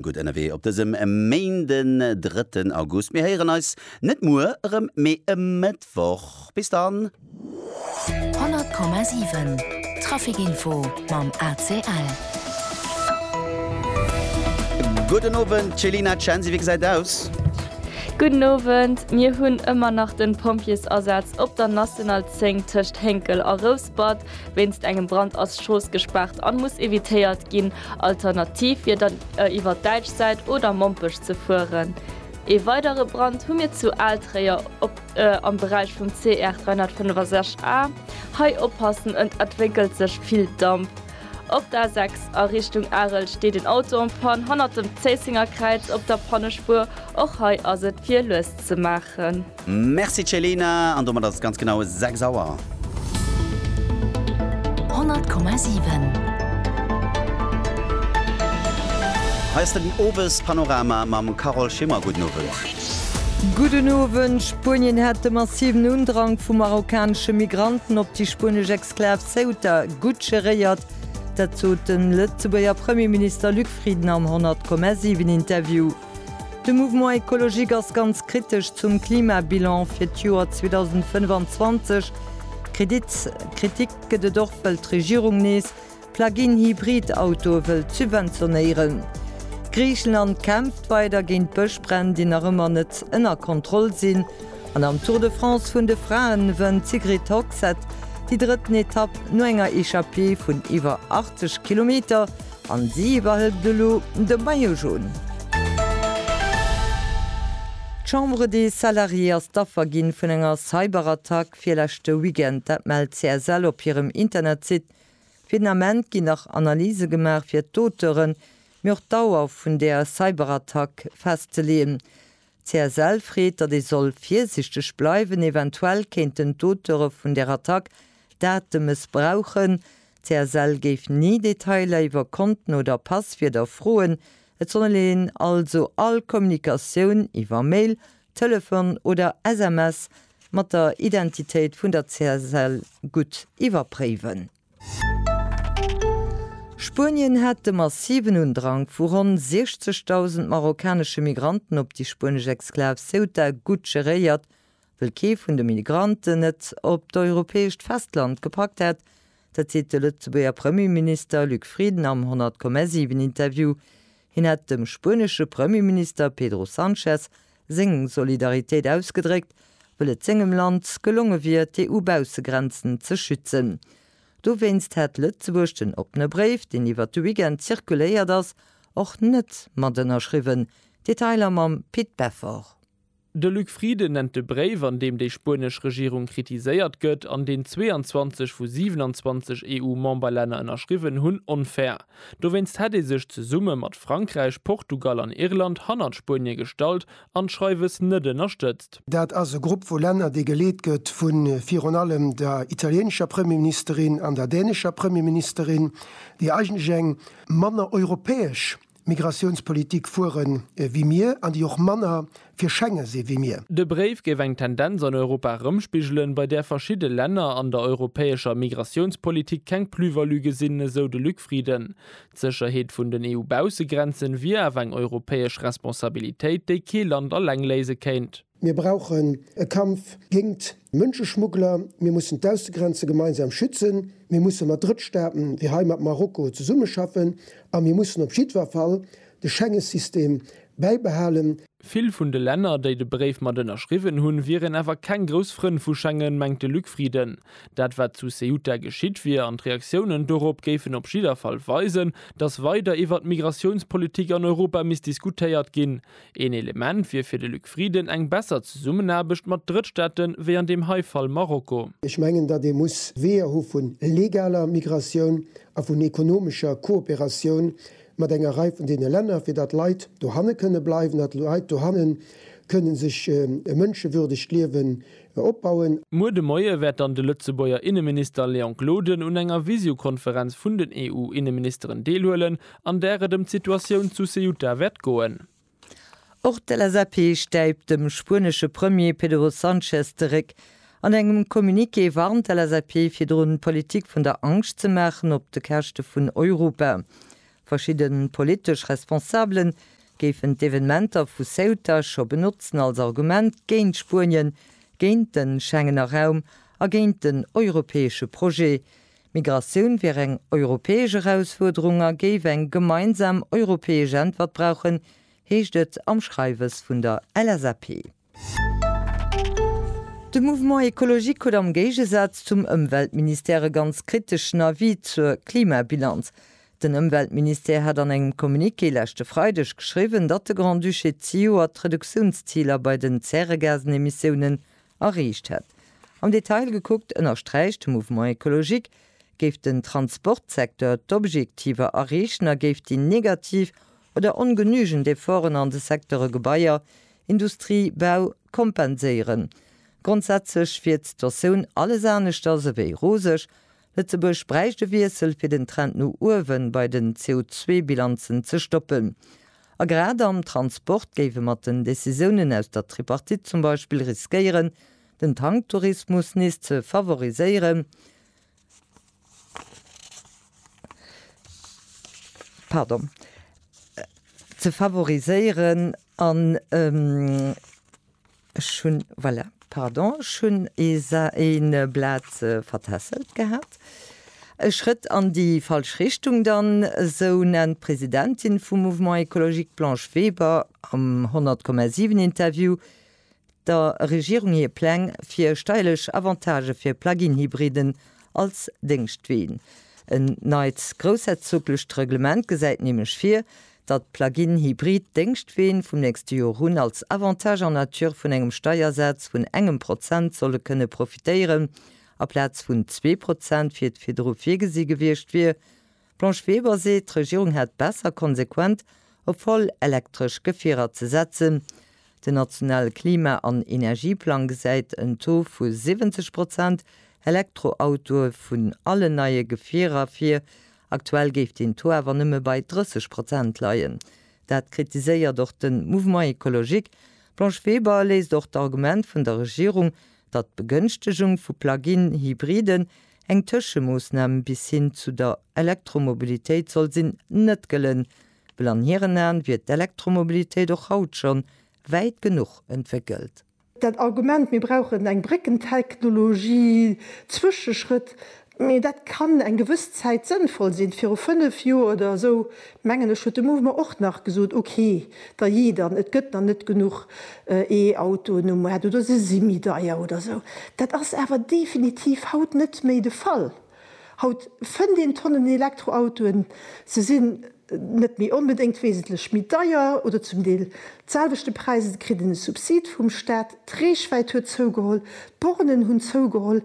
Gutt ënnerwee op dësem Méinden, drëtten August. Mir héieren eis net muer erëm, mee e Mëttwoch. Bis dann. 100,7 Trafic Info mam ACL. Gudden Owend Céline Censi, wéi gesäit aus? Gudden Owend, mir hunn ëmmer nach den Pompjeesasaz op der National 10 tëscht Hénkel a Rouspert. Wéinst engem Brand ass Strooss gespaart an muss evitéiert ginn. Alternativ wier dann iwwer d'däitsch Säit oder Mompech ze fueren. Ee weidere Brand hu mir zu Altréier am Beräich vum CR 365 A. Hei oppassen, ët entwéckelt sech vill Damp. Op der A6 a Richtung Arel steet een Auto en panne hannert dem Zéissenger Kräiz op der Pannespuer. Och hei ass et fir lues ze maachen. Merci Céline, an domat ass et ganz genau 6 Auer. 100,7. Hei ass den Owespanorama mam Carole Schimmer. Gudden Owend. Gudden Owend. Spuenien hat de massiven Undrang vu marokkanesche Migranten op déi spuenesch Exklav Ceuta gutt geréiert. Dat sot de Lëtzebuerger Premierminister Luc Frieden am 100,7 Interview. De Mouvement Ecologique ass ganz kritesch zum Klimabilan fir d'Joer 2025. Kritik gëtt et och, well d'Regierung nees Plug-in Hybrid-Autoe wëllt subventionéieren. Griichenland kämpft weider géint d'Bëschbränn, déi nach ëmmer net ënner Kontroll sinn. An am Tour de France vun de Fraen wënnt d'Sigrid Hogsett déi drëtten Etapp no enger Echappée vun iwwer 80 Kilometer. An si iwwerhëlt elo de Maillot Jaune. D'Chambre des Salariés ass d'Affer ginn vun enger Cyberattack virleschte Weekend. Dat mellt CSL op hirem Internetsite. Fir den Ament ginn nach Analyse gemaach fir d'Auteuren, mee och d'Dauer vun där Cyberattack festzeleeën. D'CSL freet, datt ee soll virsichteg bleiwen, eventuell kéinten d'Auteure vun der Attack d'Date mëssbrauchen. D'CSL géif ni Detailer iwwer Konten oder Passwierder froen. Et soll een also all Kommunikatioun iwwer Mail, Telefon oder SMS mat der Identitéit vun der CSL gutt iwwerpréiwen. Spuenien hat de massiven Undrang vu ronn 60.000 marokkanesche Migranten op déi spuenesch Exklav Ceuta gutt geréiert. Wëll kee vun de Migranten et op d'europäescht Festland gepackt hätt, dat seet de Lëtzebuerger Premierminister Luc Frieden am 100,7 Interview. Hien hätt dem spuenesche Premierminister Pedro Sanchez seng Solidaritéit ausgedréckt, wëll et sengem Land gelonge wier, d'EU-Baussegrenzen ze schützen. Dowéinst hätt Lëtzebuerg den oppene Bréif, deen iwwert de Weekend zirkuléiert ass, och net mat ënnerschriwwen. Detailer mam Pit Beffort. De Luc Frieden nennt de Bréif, an deem déi spuenesch Regierung kritiséiert gëtt, an deen 22 vu 27 EU-Memberlänner ënnerschriwwen hunn, onfair. Dowéinst hätt ee sech zesumme mat Frankräich, Portugal an Irland hannert Spuenie gestallt an d'Schreiwes net ënnerstëtzt. Dat ass e Grupp vu Länner, dee geleet gëtt vu virun allem der italieenescher Premierministerin an der dänescher Premierministerin, déi eigentlech eng manner europäesch Migratiounspolitik fuere wéi mir an déi och manner fir Schenge si wéi mir. De Bréif géif eng Tendenz an Europa erëmspigelen, bei där verschidde Länner an der europäescher Migratiounspolitik keng Plus-value gesinn, esou de Luc Frieden. D'Sécherheet vun den EU-Baussegrenzen wier awer eng europäesch Responsabilitéit, déi kee Land alleng léise kéint. Mir brauchen e Kampf géingt Mënscheschmuggler, mir mussen d'Aussegrenze gemeinsam schützen, mir musse mat Drëttstaaten, wéi hei mat Marokko, zesummeschaffen a mir mussen op jiddwer Fall De Schengesystem bäibehalen. Vill vun de Länner, déi de Bréif mat ënnerschriwwen hunn, wieren awer keng grouss Frënn vu Schengen, mengt de Luc Frieden. Dat wat zu Ceuta geschitt wier an d'Reaktiounen dorop géifen op jidder Fall weisen, datt weider iwwert d'Migratiounspolitik an Europa misst diskutéiert ginn. Een Element wier fir de Luc Frieden eng besser Zesummenaarbecht mat Drëttstaate wéi an deem hei Fall Marokko. Ech mengen, datt ee muss Weeër hu vu legaler Migratioun a vun ekonomescher Kooperatioun, mat enger Rei vun deene Länner, fir datt Leit dohanne kënne bleiwen, datt Leit dohanne kënne sech e mënschewürdegt Liewen opbauen. Muer de Moie wäert dann de Lëtzebuerger Inneminister Léon Gloden un enger Visiokonferenz vun den EU-Inneministeren deelhuelen, an där et ëm d'Situatioun zu Ceuta wäert goen. Och d'LSAP stäipt dem spuenesche Premier Pedro Sanchez de Réck. An engem Communiqué warnt d'LSAP virdrun, Politik vun der Angscht ze maachen op de Käschte vun Europa. Verschidde politesch Responsabele géifen d'Evenementer vu Ceuta scho benotzen als Argument géint Spuenien, géint de Schengener Raum a géint den europäesche Projet. D'Migratioun wier eng europäesch Erausfuerderung a géif eng gemeinsam europäesch Äntwert brauchen, heescht et am Schreiwes vun der LSAP. De Mouvement Ecologique huet am Géigesaz zum Ëmweltministère e ganz kriteschen Avis zur Klimabilanz. Den Ëmweltministère hat an engem Communiqué leschte Freideg geschriwwen, datt de Grand-Duché zejoert d'Reduktiounsziler bei den Zäregasenemissiounen erreecht hätt. Am Detail gekuckt ënnersträicht de Mouvement Ecologique, géif den Transportsecteur d'Objektiver erreechen a géif déi negativ oder ongenügend Efforten an de Secteure Gebaier, Industrie, Bau kompenséieren. Grondsätzlech wier d'Sitotioun alles aneschters ewéi roseg, Lëtzebuerg bräicht e Wiessel, fir den Trend no uewe bei den CO2-Bilanzen ze stoppen. A grad am Transport géif e mat den Decisiounen aus der Tripartite zum Beispill riskéieren, den Tanktourismus nees ze favoriséieren. Ech hunn, voilà, pardon, ech hunn ee Blat vertässelt gehat. E Schrëtt an déi falsch Richtung dann, esou nennt d'Presidentin vum Mouvement Ecologique d'Blanche Weber am 100,7-Interview der Regierung hir Pläng fir steierlech Avantagë fir Plug-in-Hybriden als Déngschtween. En neit groussherzoglecht Reglement gesäit nämlech vir, datt d'Plug-in Hybrid Déngschtween vum nächste Jor un als Avantage en nature vun engem Steiersaz vun engem Prozent solle kënne profitéieren, aplaz vun zwee Prozent wéi et virdru virgesi gewiescht wier. D'Blanche Weber seet, d'Regierung hätt besser konsequent op voll elektresch Gefierer ze setzen. Den nationale Klima an Energieplang gesäit en Taux vu 70 Prozent Elektroautoe vun allen neie Gefierer vir, Aktuell géif den Taux awer nëmme bei 30 Prozent leien. Dat kritiséiert och de Mouvement écologique. D'Blanche Weber léisst och d'Argument vun der Regierung, datt d'Begënchtegung vu Plug-in-Hybriden eng Tëschemoossnam bis hin zu der Elektromobilitéit soll sinn, net gëllen, well an hiren Aen wier d'Elektromobilitéit och haut schonn wäit genuch entwéckelt. Dat Argument, mir brauchen eng Bréckentechnologie, Zwëscheschrëtt, mee dat kann eng gewëss Zäit sënnvoll sinn, viru fënnf Joer oder esou, mengen ech, huet de Mouvement och nach gesot, okay, dajee dann, et gëtt nach net genuch E-Autoen um Maart oder se si méi deier oder esou. Dat ass awer definitiv haut net méi de Fall. Haut fënnt een Tonnen Elektroautoen, se sinn net méi onbedéngt wesentlech méi deier oder zum Deel d'selwechte Präis, et kritt een e Subsid vum Staat, d'Reechwäit huet zougeholl, d'Bornen hunn zougeholl,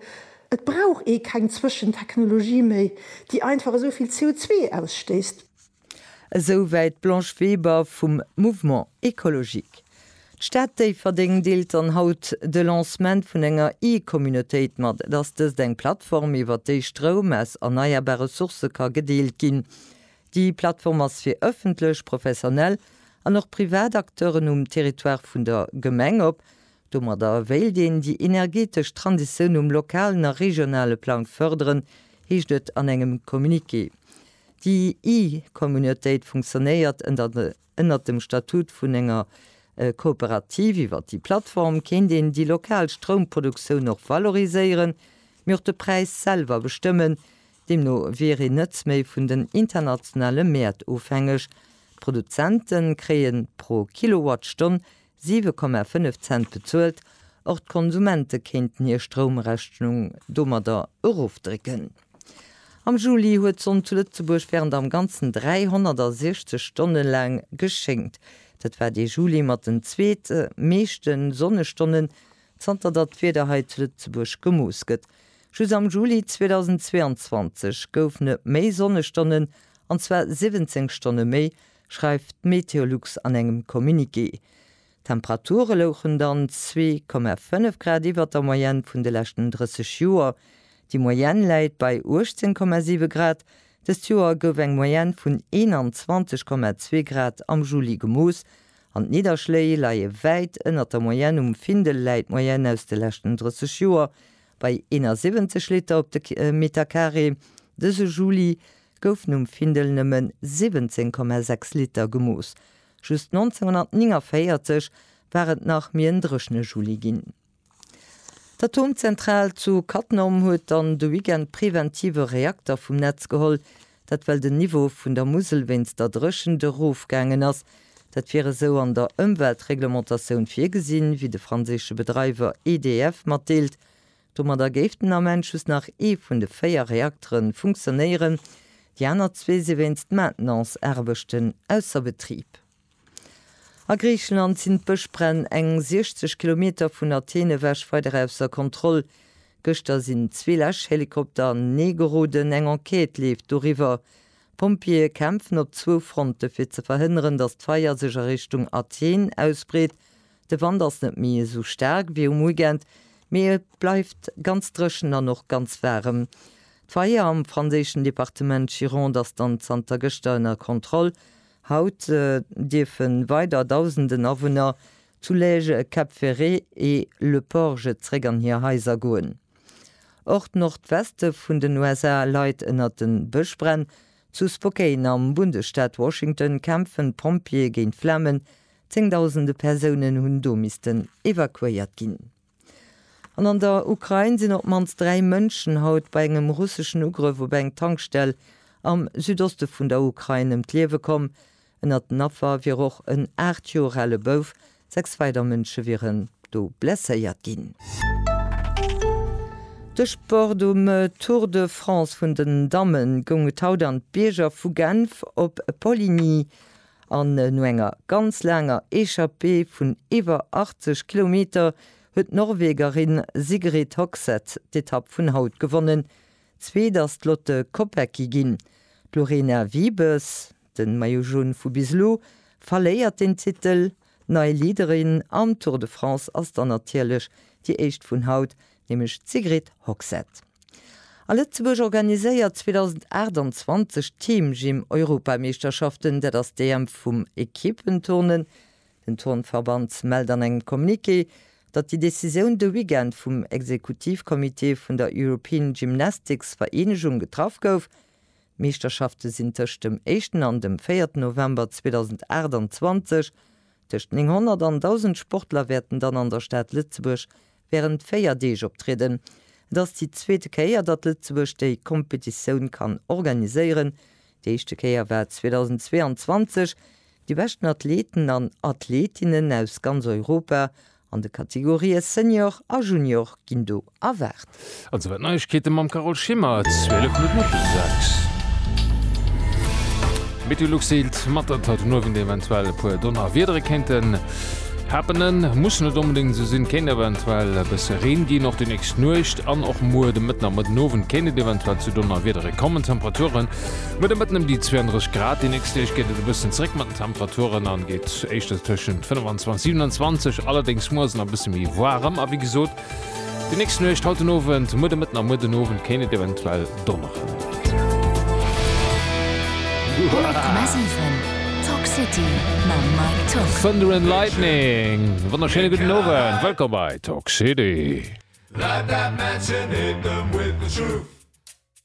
et brauch ee keng Zwëschentechnologie méi, déi einfach esou vill CO2 ausstéisst. Esou wäit d'Blanche Weber vum Mouvement Ecologique. D'Stad Déifferdeng deelt dann haut de Lancement vun enger E-Communautéit mat. Et ass dëst eng Plattform, iwwer déi Stroum aus erneierbare Sourcë ka gedeelt ginn. Déi Plattform ass fir ëffentlech, professionell an och privat Acteuren um Territoire vun der Gemeng op. Domadder wéilt een déi energetesch Transitioun um lokalen a regionale Plang fërderen, heescht et an engem Communiqué. Déi e-Communautéit funktionéiert ënnert dem Statut vun enger Kooperativ. Iwwer déi Plattform kéint een déi lokal Stroumproduktioun och valoriséieren, mee och de Präis selwer bestëmmen. Deemno wier een net méi vun den internationale Mäert ofhängeg. D'Produzente kréie pro Kilowattstonn 7,5 Cent bezuelt, och d'Konsumente kéinten hir Stroumrechnung domadder erofdrécken. Am Juli huet d'Sonn zu Lëtzebuerg wärend am Ganzen 360 Stonne laang geschéngt. Dat war dee Juli mat den zweet meeschte Sonnestonnen, zanter datt d'Wieder hei zu Lëtzebuerg gemooss gëtt. Just am Juli 2022 goufen et méi Sonnestonnen, an zwar 17 Stonne méi, schreift Meteolux an engem Communiqué. D'Temperature louchen dann zwee Komma fënnef Grad iwwert der Moyenne vun de leschten 30 Joer. Déi Moyenne läit bei 18 Komma siwe Grad. Dëst Joer gouf eng Moyenne vun 21 Komma zwee Grad am Juli gemooss an d'Nidderschléi leie wäit ënnert der Moyenne. Um Findel läit d'Moyenne aus de leschten 30 Joer bei 71 Liter op de Meterkaree. Dëse Juli goufen um Findel nëmmen 17,6 Liter gemooss. Just 1949 war et nach méi en dréchne Juli ginn. D'Atomzentral zu Cattenom huet dann de Weekend preventiv e Reakter vum Netz geholl. Dat well den Niveau vun der Musel wéinst der Dréchent erofgaangen ass. Dat wier esou an der Ëmweltreglementatioun virgesinn, wéi de franséische Bedreiwer EDF matdeelt. Domadder géif den Ament just nach ee vun de véier Reaktere funktionéieren, déi aner zwee si wéinst Maintenance-Aarbechten ausser Betrib. A Griicheland sinn d'Bëschbränn eng 60 Kilometer vun Athen ewech weider ausser Kontroll. Gëschter sinn zwee Läschhelikopter an den Ee geroden, eng Enquête leeft doriwwer. D'Pompjeeë kämpfen op zwou Fronte fir ze verhënneren, datt d'Feier sech a Richtung Athen ausbreet. De Wand ass net méi esou staark wéi um Weekend, mee et bleift ganz dréchen an och ganz waarem. D'Feier am franséischen Departement Gironde ass dann zanter gëschter ënner Kontroll. Haut dierfe weider Dausenden Awunner zu Lège, Cap Ferret e Le Porge zréck an hir Haiser goen. Och d'Nordweste vun den USA leit ënner de Bëschbränn. Zu Spokane am Bundesstaat Washington kämpfen d'Pompjeeë géint d'Flamen, Zéngdausende Persounen hunn do missten evakuéiert ginn. An an der Ukrain sinn op d'mannst dräi Mënschen haut bei engem russeschen Ugrëff op eng Tankstell am Südoste vun der Ukrain ëm d'Liewe komm. Ënnert den Affer wier och en aacht Joer ale Bouf. Sechs weider Mënsche wieren do blesséiert ginn. De Sport, Um Tour de France vun den Dammen goung et haut an d'Bierger vu Genf op Poligny. An no enger ganz laanger Echappée vun iwwer 80 Kilometer huet d'Norwegerin Sigrid Hogseth d'Etapp vun haut gewonnen. Zweet ass d'Lotte Kopecky ginn. D'Lorena Wiebes, den Maillot Jaune vu bis elo, verléiert den Titel. Nei Leaderin am Tour de France ass dann natierlech déi éischt vun haut, nämlech d'Sigrid Hogsett. A Lëtzebuerg organiséiert 2028 d'Team Gym Europameeschterschaften. Dat ass d'EM vum Equippenturnen. Den Turnverband mellt an engem Communiqué, datt déi Decisioun de Weekend vum Exekutivcomité vun der European Gymnastics Vereenegung getraff gouf. D'Meeschterschafte sinn tëscht dem éischten an dem véierten November 2028. Tëscht 900 an 1.000 Sportler wäerten dann an der Stad Lëtzebuerg wärend véier Deeg optrieden. Et ass déi zweete Kéier, datt Lëtzebuerg déi Kompetitioun kann organiséieren. Déi éischte Kéier war 2022. Déi beschten Athleten an Athletinnen aus ganz Europa An de Kategorië Senior a Junior ginn do erwaart. An souwäit d'Neiegkeete mam Carole Schimmer, 12 Minutten no der 6. Meteolux seelt mat, datt haut den Owend eventuell e puer Donnerwiedere kéinten happenen. Muss net onbedéngt esou sinn, kéint eventuell e bësse Reen ginn. Och déi nächst Nuecht an och muer de Mëtten a Mëtten Owend kéint et eventuell zu Donnerwiedere kommen. D'Temperature Muer de Mëtten ëm déi 32 Grad. Déi nächst Deeg geet et e bëssen zeréck mat den Temperaturen an geet éischter tëschent 25 a 27, allerdéngs muers nach e bësse méi waarem. A wéi gesot, déi nächst Nuecht, haut den Owend, muer de Mëtten a muer den Owend kéint et eventuell donneren. Thunder and Lightning, e wonnerschéine gudden Owend, wëllkomm bei Talk City.